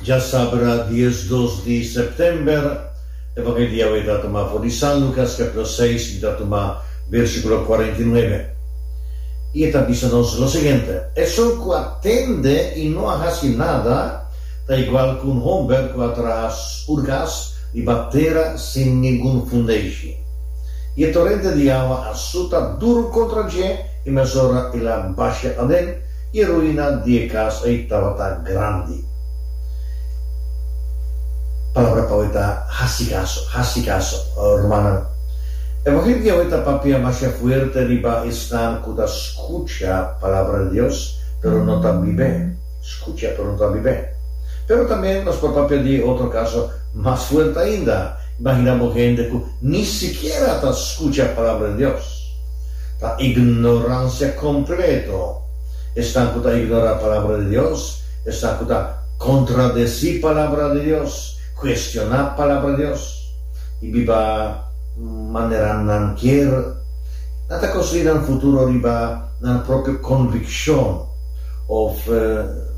Dja sabra di es dos di September, e van e dia awor e ta tuma for di San Lucas capitulo seis, mi ta tuma versiculo cuarenta i nuebe. I e ta bisa nos lo siguiente, Esun cu a tende i no a haci nada, ta igual cu un homber cu a traha urgas riba tera sin ningun fundeishi. I e torente di awa a suta duru contra dje, i mesora el a basha aden, E ruina di e cas ei tabata grandi. Palabra pa awey ta haci caso, haci caso, rumannan. Evangel di awey ta papia masha fuerte riba esnan cu ta scucha Palabra di Dios, pero no ta bib'é. Scucha, pero no ta bib'é. Pero tambe nos por papia di e otro caso mas fuerte ainda. Imagina bo hende cu ni sikiera ta scucha Palabra di Dios. Ta ignorancia completo. Esnan cu ta ignora Palabra di Dios, esnan cu ta contradeci Palabra di Dios, cuestiona Palabra di Dios y biba manera nan kier, nan ta construi nan futuro riba nan propio conviccion of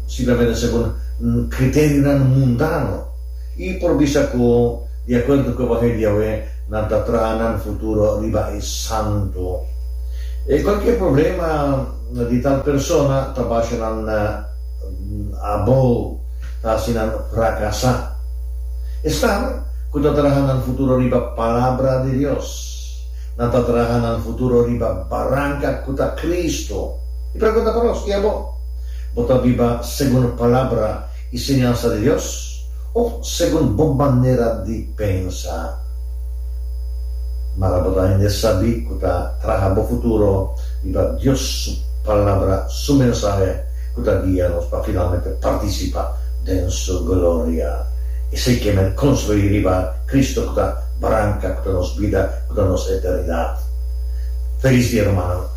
simplemente segun criteriunan mundano. I por bisa ku di akuerdo ku evangelio di Yahweh nan ta traha nan futuro riba e santu. E kualkier problema di tal persona ta basha nan abou, ta hasi nan frakasá. Esnan ku ta traha nan futuro riba palabra di Dios, nan ta traha nan futuro riba baranka ku ta Kristu. Mi pregunta pa nos, i abo? Bo ta biba segun Palabra? E siñansa di Dios of segun bo manera di pensa? Mara bo ta hende sabí ku ta traha bo futuro riba Dios su Palabra, su mensahe ku ta guia nos pa finalmente partisipa den su gloria. Esei ke men konstruí riba Kristu ku ta branka, ku ta nos bida, ku ta nos eternidat. Felis dia, rumannan!